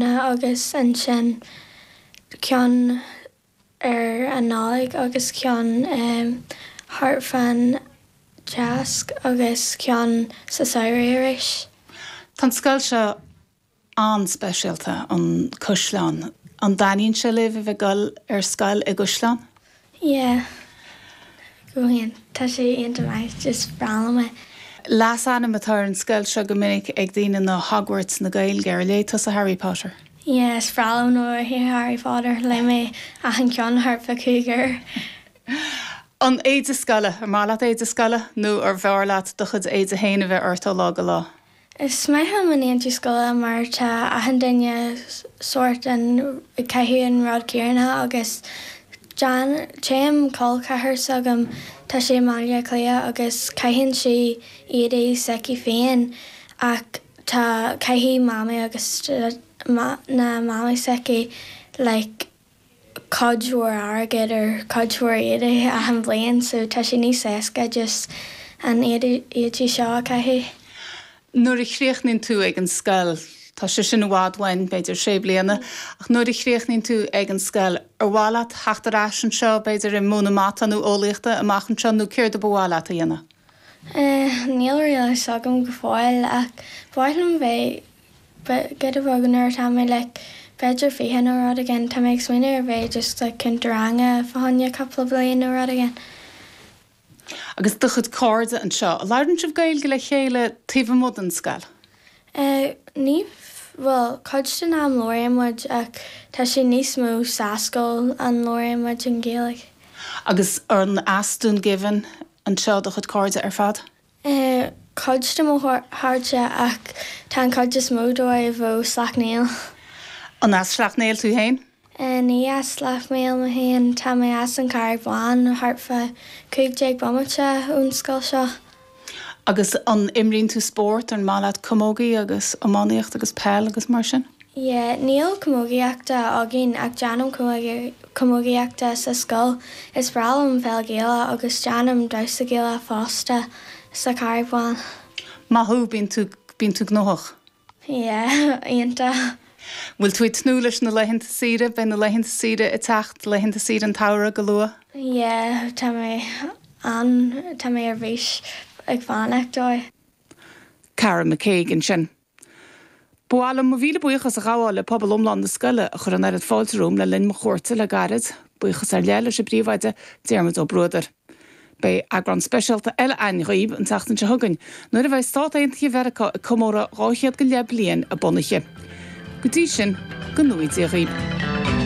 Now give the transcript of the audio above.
na agus ansin ceann ar an Nollaig agus ceann thart fán Cháisc agus ceann sa samhradh arís. Tá an scoil seo an-speisialta, an Caisleán. An dtaitníonn sé libh a bheith ag dul ar scoil i gCaisleán? Yeah. Tá sé iontach maith. Is breá liom é. Leasainm atá ar an scoil seo go minic ag daoine ná Hogwarts na Gaeilge. Ar léigh tusa Harry Potter? Yeah, is breá liom Harry Potter. Léigh mé achan ceann thart fá cúig huaire. An éide scoile. An maith leat éide scoile nó arbh fhearr leat do chuid éide féin a bheith ort ó lá go lá? Is maith liom an éide scoile mar tá achan duine sórt an ag caitheamh an rud céanna agus dá dtéim col ceathar s'agam, tá sé i mBaile Átha Cliath agus caitheann sí éadaí s'aici féin ach tá, caithfidh mamaí agus na mamaí s'aici like, cuid mhór airgid ar chuid mhór éadaí achan bhliain so tá sé níos éasca just an éadaí seo a chaitheamh. nuair a chríochnaíonn tú ag an scoil, tá sé sin i bhfad uainn, b'fhéidir sé bliana, ach nuair a chríochnaíonn tú ag an scoil, ar mhaith leat theacht ar ais anseo, b'fhéidir ag múineadh mata nó eolaíocht amach anseo nó céard a ba mhaith leat a dhéanamh? Eh, níl a fhios agam go fóill ach ba mhaith liom bheith B'fhéidir ag teagasc nuair atá mé, like, b'fhéidir fiche nó rud éigin. Tá mé ag smaoineamh ar bheith just like cúnta ranga fá choinne cupla bliain nó rud éigin. Agus do chuid cairde anseo, labhraíonn sibh Gaeilge le chéile taobh amuigh den scoil? Eh, ní, bhuel, cuid den am labhraíonn muid ach tá sé níos mó sa scoil a labhraíonn muid an Ghaeilge. Agus an as Dún Geimhin anseo do chuid cairde ar fad? Tá cuid de mo chairde ach tá an chuid is mó díobh ó Sleacht Néill. An as Sleacht Néill tú féin? Ní as Sleacht Néill mé féin, tá mé as an Chathraigh Bhán, thart fá cúig déag bomaite ón scoil seo. Agus an imríonn tú spórt? An maith leat camógaíocht agus iománaíocht agus peil agus mar sin? Yeah, níl camógaíocht againn ach déanaim camógaíocht sa scoil. Is breá liom an pheil Ghaelach agus déanaim damhsa Gaelach fosta sa Chathraigh Bhán. Maith thú, bíonn tú, bíonn tú gnóthach. Yeah. Iontach. Bhfuil tú ag tnúth leis na laethanta saoire? Beidh na laethanta saoire ag teacht, laethanta saoire an tsamhraidh go luath. Yeah, tá mé an, tá mé ar bís ag fanacht dóibh. Cara McKague ansin. Ba mhaith liom mo mhíle buíochas a ghabháil le pobal iomlán na scoile a chuir an oiread fáilte romham le linn mo chuairte le gairid. Buíochas ar leith leis an bPríomhoide, Diarmaid Ó Bruadair. Beidh eagrán speisialta eile againn dhaoibh an tseachtain seo chugainn, nuair a bheidh Stáit Aontaithe Mheiriceá ag comóradh dhá chéad go leith bliain a bunaithe. Go dtí sin, go nuaí Dia dhaoibh.